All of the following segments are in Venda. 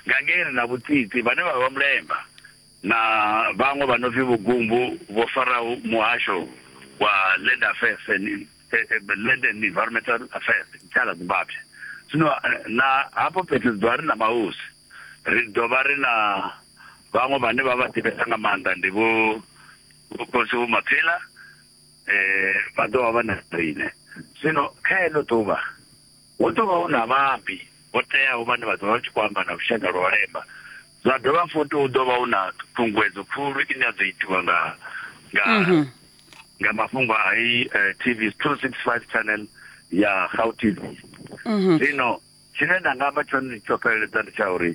Gangeni na Vhutsitsi vhane vha vha Mulemba na vhaṅwe vha no pfi Vhugumbu vho faraho Muhasho wa Land Affairs and Land and Environmental Affairs, Tshala Zimbabwe. Zwino na hafho fhethu ri ḓo vha ri na mahosi, ri ḓo vha ri na vhaṅwe vhane vha vha ḓivhesa nga maanḓa ndi vho vho Khosi Vho Maphela vha ḓo vha vha na riṋe. Zwino kha heḽo ḓuvha. Hu ḓo vha hu na vhaambi vho teaho vhane vha ḓo vha vha tshi khou amba na lushaka lwa u lema. Zwa dovha futhi hu ḓo vha hu na ṱhuṱhunguwedzo khulu ine ya ḓo itiwa nga nga mhm. nga mafhungo a i eh, TV 265 channel ya Gau TV. Mhm. Zwino tshine nda nga amba tshone ndi tsho fheleledza ndi tsha uri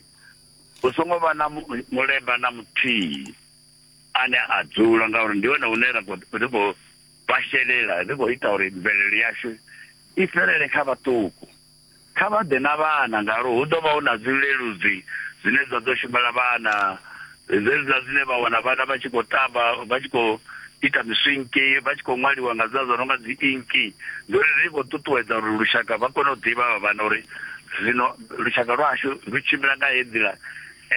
hu songo vha na mulemba na muthihi ane a dzula ngauri ndi hone hune ra khou Vha shelela, ri khou ita uri mvelelo yashu i fhelele kha vhaṱuku. Kha vha ḓe na vhana ngauri hu ḓo vha hu na zwileludzi zwine zwa ḓo shumela vhana, zwenezwiḽa zwine vha wana vhana vha tshi khou tamba vha tshi khou ita miswinki, vha tshi khou ṅwaliwa nga zwiḽa zwo no nga dzi inki. Ndi uri ri khou ṱuṱuwedza uri lushaka vha kone u ḓivha havha vhana uri zwino lushaka lwashu lu tshimbila nga heyi nḓila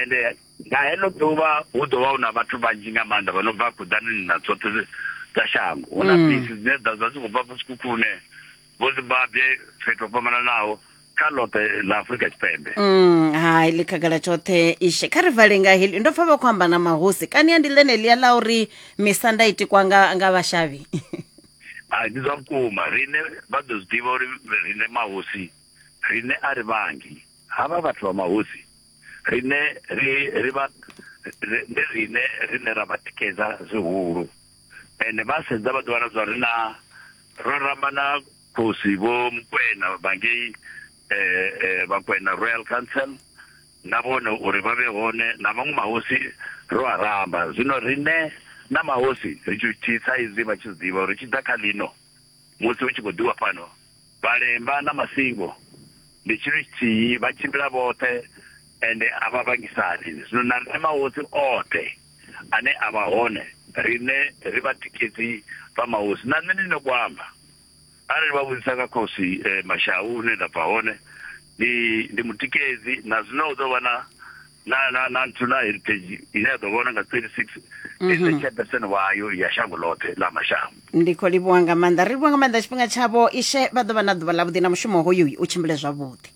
ende. Nga heḽo ḓuvha hu ḓo vha hu na vhathu vhanzhi nga maanḓa vha no bva khuḓanini na tshoṱhe dza shango. Hu na mm. bisi dzine dza dza dzi khou bva vhusikhukhuṋe vho zimbabwe fhethu ho fhambananaho kha ḽoṱhe ḽa afurika tshipembe mm, hai ḽi khagala tshoṱhe ishe kha ri vale nga heḽi ndo pfa vha khou amba na mahosi kani ya ndi ḽeneḽia ḽa uri misanda i tikwa nga nga vhashavhi hai ndi zwa vhukuma riṋe vha ḓo zwi ḓivha uri riṋe mahosi riṋe a ri vhangi havha vhathu vha mahosi rine ri ri vha ndi rine rine ra vha tikedza zwihulu ende vha sedza vha ḓi wana zwa ri na ro ramba na khosi vho mukwena vhangei eh, eh, vhakwena royal council na vhone uri vha vhe hone na maṅwe mahosi ro a ramba zwino rine na mahosi ri tshi thisa izwi vha tshi ḓivha uri tshi ḓa kha lino musi hu tshi khou ḓiwa fhano Vhalemba na masingo ndi tshithu tshithihi, vha tshimbila vhoṱhe ende a vha vhangisani. Zwino na riṋe mahosi oṱhe ane a vha hone, riṋe ri vhatikedzi vha mahosi. Na nṋe ndi na ku amba, arali vha vhudzisa nga khosi Mashau hune nda bva hone, Ndi, ndi mutikedzi, na zwino hu ḓo vha na na na na nthu na heritage ine ya ḓo vhona nga 36 mm -hmm. chapterson wayo ya shango ḽoṱhe ḽa mashango ndi khou livhuwa nga maanḓa ri livhuwa nga maanḓa tshifhinga tshavho ishe vha ḓo vha na ḓuvha ḽavhuḓi na mushumo hoyu u tshimbile zwavhuḓi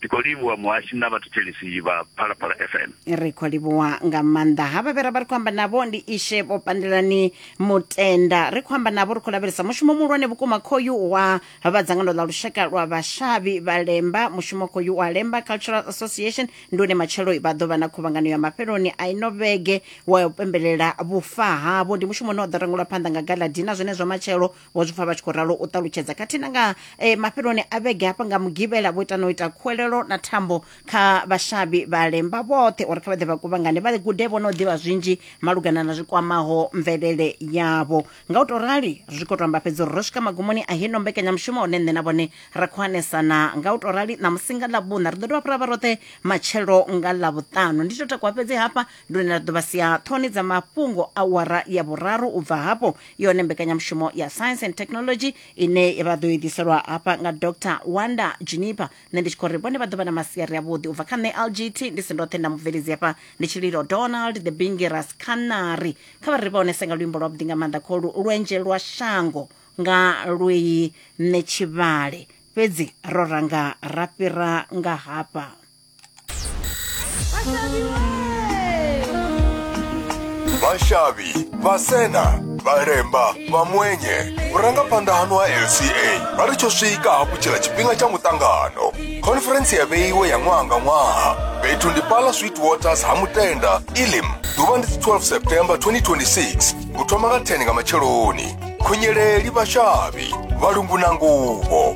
ndi khou livhuwa muhashi na vhathetshelisi vha phalaphala fm ri khou livhuwa nga maanḓa ha vhavhe ra vha ri khou amba navho ndi ishe vho pandelani mutenda ri khou amba navho ri khou lavhelesa mushumo muhulwane vhukuma khoyu wa vha dzangano ḽa lushaka lwa vhashavhi vha lemba mushumo khoyu wa lemba cultural association ndi une matshelo vha ḓo vha na khuvhangano ya mafheloni a ino vhege wa u pembelela vhufa havho ndi mushumo une wa ḓo rangulwa phanḓa nga galadina zwenezwo matshelo vho zwi pfa vha tshi khou ralo u ṱalutshedza khathihi na nga eh, mafheloni a vhege hafha nga mugivhela vho ita na u ita khuwelelo na thambo kha vhashavhi vha lemba vhoṱhe uri kha vha ḓe vha kuvhangane vha gude vho no ḓivha zwinzhi malugana na zwi kwamaho mvelele yavho nga u tou rali ri khou tou amba fhedzi uri ro swika magumoni a hino mbekanyamushumo hune nṋe na vhone ra khou anesana nga u tou rali ṋamusi nga ḽavhuṋa ri ḓo dovha fhira vha roṱhe matshelo nga ḽavhuṱanu ndi tou takuwa fhedzi hafha ndi hune ra ḓo vha sia ṱhoni dza mafhungo a wara ya vhuraru u bva hafho yone mbekanyamushumo ya science and technology ine vha ḓo i ḓiselwa hafha nga dr wanda juniper nṋe ndi tshi khou ri vhone vha ḓo vha na masiari avhuḓi u bva kha nṋe lgt ndi si ndoṱhe nda mubveledzi hafha ndi tshililo donald the bingiras canary kha vha ri vha onese nga luimbo lwavhuḓi nga maanḓa kholu lwenje lwa shango nga lweyi nṋe tshivhale fhedzi ro ranga ra fhira nga hafha vashavhi vhasena vharemba vhamwenye vhurangaphanḓa hanu ha lca vha ri tsho swika hafhu tshila tshifhinga tsha muṱangano khonferentsi ya vheiwe ya ṅwaha nga ṅwaha fhethu ndi pala sweet waters ha mutenda ilim ḓuvha ndi 12 september 2026 u thoma nga 10 nga matsheloni khunyeleli vhashavhi vhalungu na nguvho